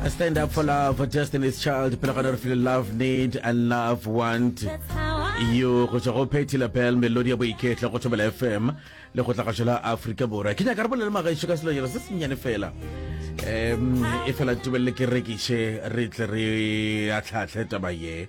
I stand up for love for destiny's child pele gona re file love need and love want yo go tšwa go phetty lapel melodi ya boiketlo go thobela fm le go tlagašo la aforika borwa ke nyaka re bolele magaešo ka selonyana se sennyane fela um e fela tubelele ke rekiše re tle re atlhaatlhe taba ye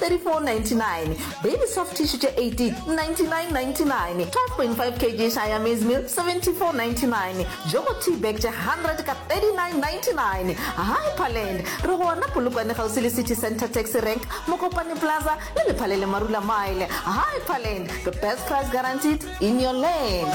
3499 Baby soft tissue tše 18 9999 12.5 kg Siamese meal 7499 Jogo tea bag tše 100 ka 3999 Hyperland re gona Polokwane kgauswi le City Centre Taxi Rank Mokopane Plaza le Lephaleng le Marula Mile Hyperland the best price guaranteed in your land.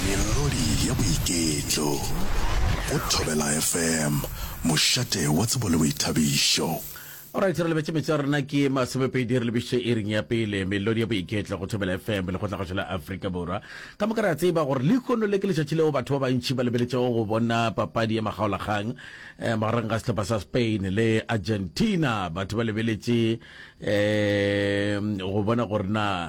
Melodi ya boiketlo go Thobela FM. Mošate wa tsebo le boithabišo. Alright, re lebetše metso ya rena ke masomepedi, re lebišitše iring ya pele, melodi ya boiketlo go Thobela FM le go tla gašo la Afrika Borwa. Ka moka re a tseba gore lehono le ke letšatši leo batho ba bantši ba lebeletšego go bona papadi ya makgaolakgang eh, magareng ga sehlopha sa Spain le Argentina. Batho ba lebeletše eh, go bona gore na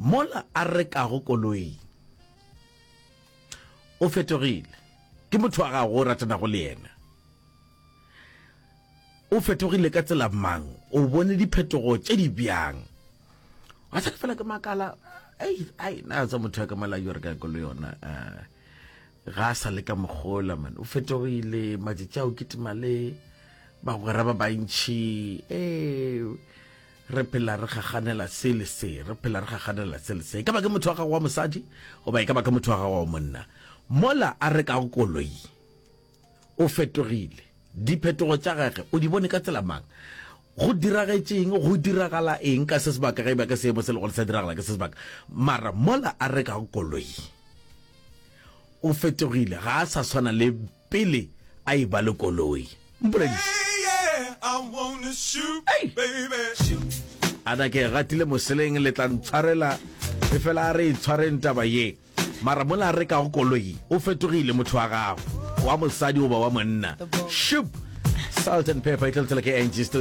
Mola a rekago koloing o fetogile. Ke motho wa gago o ratanago le yena. O fetogile ka tsela mang? O bone diphetogo tše di bjang? Wa tsaka fela ke makala ei ai na tsa motho ya ka mala yo re ka kolo yona ga a sa le ka mogola man o fetogile matsatsi a o kitima le bagwera ba bantšhi ee re phela re gaganela se le se re phela re gaganela se le se e ka ba ke motho wa gago wa mosadi goba e ka ba ke motho wa gago wa monna mola a re ka go koloi o fetogile diphetogo tša gage o di bone ka tsela mang go diragetseng go diragala eng ka se sebaka ge e ba ka seemo se le gore sa diragala ka se sebaka mara mola a re ka go koloi o fetogile ga a sa tshwana le pele a e ba le koloi. Mpolediše. A na ke e gatile moseleng, le tla ntshwarela, efela a re e tshwareng taba ye. Mara mola a rekago koloi, o fetogile motho wa gago, wa mosadi goba wa monna. Shup! Salt and Pepper e tlo le tsela ke Angie Studio.